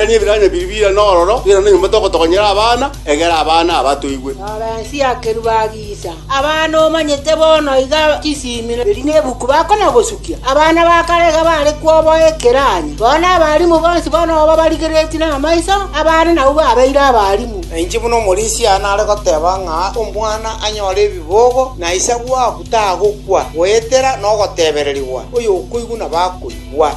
Tania ebiranya biria bire n'ororo, erinde nonya motogotokonyera abana, egera abana aba toigwe. Lorensi y'akeru bagiita. Abana omanyete bono iga chisiimire, erio nebuku bakona gosukia. Abana ba kare iga bare kwoboa ekeranya. Bono nabarimu bonsi bono obo barigereretie namaiso, abana nabwo babeire abarimu. Na inche buna omorisia aye nare goteba ng'a omwana anyore ebibogo, na ise bwaku tagokwa, goetera nogotebererigwa, oyokoigwa nabo akoigwa.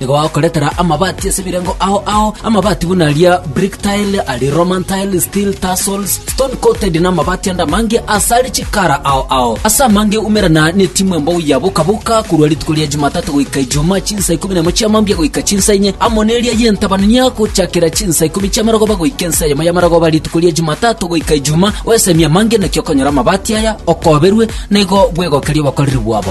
Nigo bagokoretera amabati ase ebirengo ao ao, amabati buna aria brick tile, aria Roman tile, steel tassels, stone coated, na amabati ande amange ase aria chikara ao ao. Ase amange umerana netimu embogo ya boka boka korwa rituko ria Jumatatu goika Ijumaa chinsa ikomi na imo chia mambia goika chinsa inye, amo neria y'entabanania gochakera chinsa ikomi chia marogoba goika ensa eyemo ya marogoba rituko ria Jumatatu goika Ijumaa. Oesemie amange naki okonyora amabati aya, okoberwe, na igo bwegokerie obokoreri bwabo.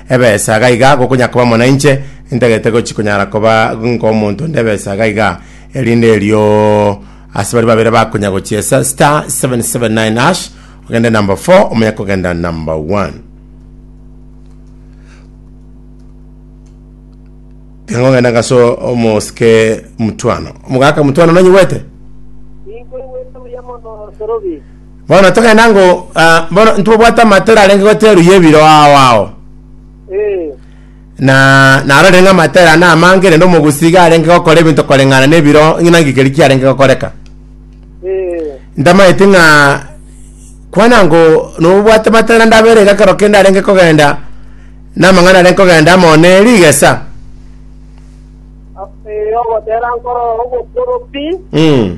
Ebesaaga iga gokonyakoba mo nainche, intagete gochi konyara koba ngomonto onde ebesaaga iga, erinde erio ase baria babere bakonya gochiesa star 779 hash ogende number 4 omonye kogenda number 1. Tengo ngenda ngaso omosike mutwano. Omogaka mutwano nanyigwete? Ninkoigwete buya mono, Sorobi. Bono togenda ngo ah, bono ntobwate amatera arenge goteru y'ebiro ao ao Eh, na naro renge amatera na amange rende omogusige arenge gokora ebinto koreng'ana n'ebiro ng'ina ngikeri kiarenge gokoreka eh, ntamaeti ng'a kwana ngo nobwate matera ndabere iga kero kende arenge kogenda namang'ana arenge kogenda amo ne rigesa a- eh, ogotera nkoro ogokoro pi mm.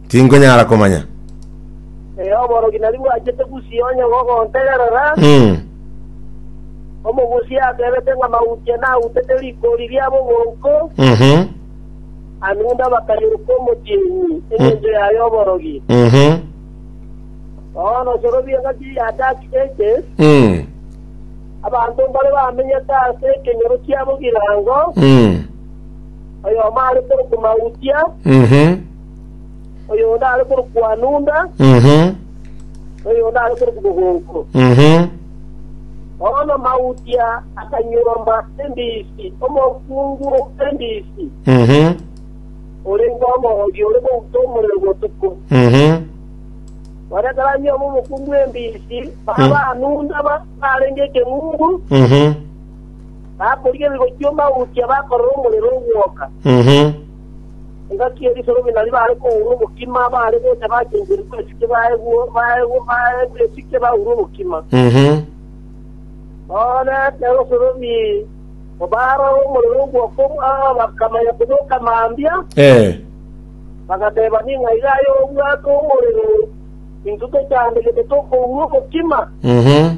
Tinkonyara komanya. Ee, oborogi nari bwachete gusii onye gogontegerera. Mm. Omogusii atebete ng'a mauche nautete rikori ria bogonko, Mhm. anunda bakairuka omotienyi engencho yaye oborogi. Mhm. Bono osorobie ng'a ki giataki gete, Mm. abanto mbare bamenyete ase ekenyoro kiabo girango, Mm. oyomo are korokwa mautia, Mhm. oyonde are korokwa Nunda, Mhm. na oyonde are korokwa Mogongo. Mhm. Bono Mautia akanyuoma embisi, omokungu bw'embisi, Mhm. orenge omogogi ore kouta omorero botuko. Mhm. Baria karanyuoma omokungu bw'embisi, baba Nunda ba- barenge ekeng'ungu, Mhm. bakorigereria gochia Mautia bakorora omorero ogwoka. Mhm. Engaki y'erisorobi nario baare kourwa obokima, baare gocha bachencherigwe esike baegwe baegwe baegwe esike baurwe obokima. Mhm. Bono ekero osorobi obaara omorero ogwoko omwao bakamanya koboka mambia, Eh. bagateba ning'a iga aye obwate omorero intwe tochande gete tokourwa obokima. Mhm.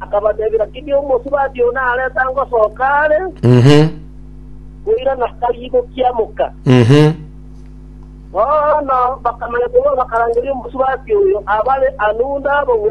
Akabatebera, Kiria omosubati oo nareta ngosoka are, Mhm. koirana aribokia moka. Mhm. Bono bakamanya korwa bakarangeria omosubati oyo abare Anuda bogongo.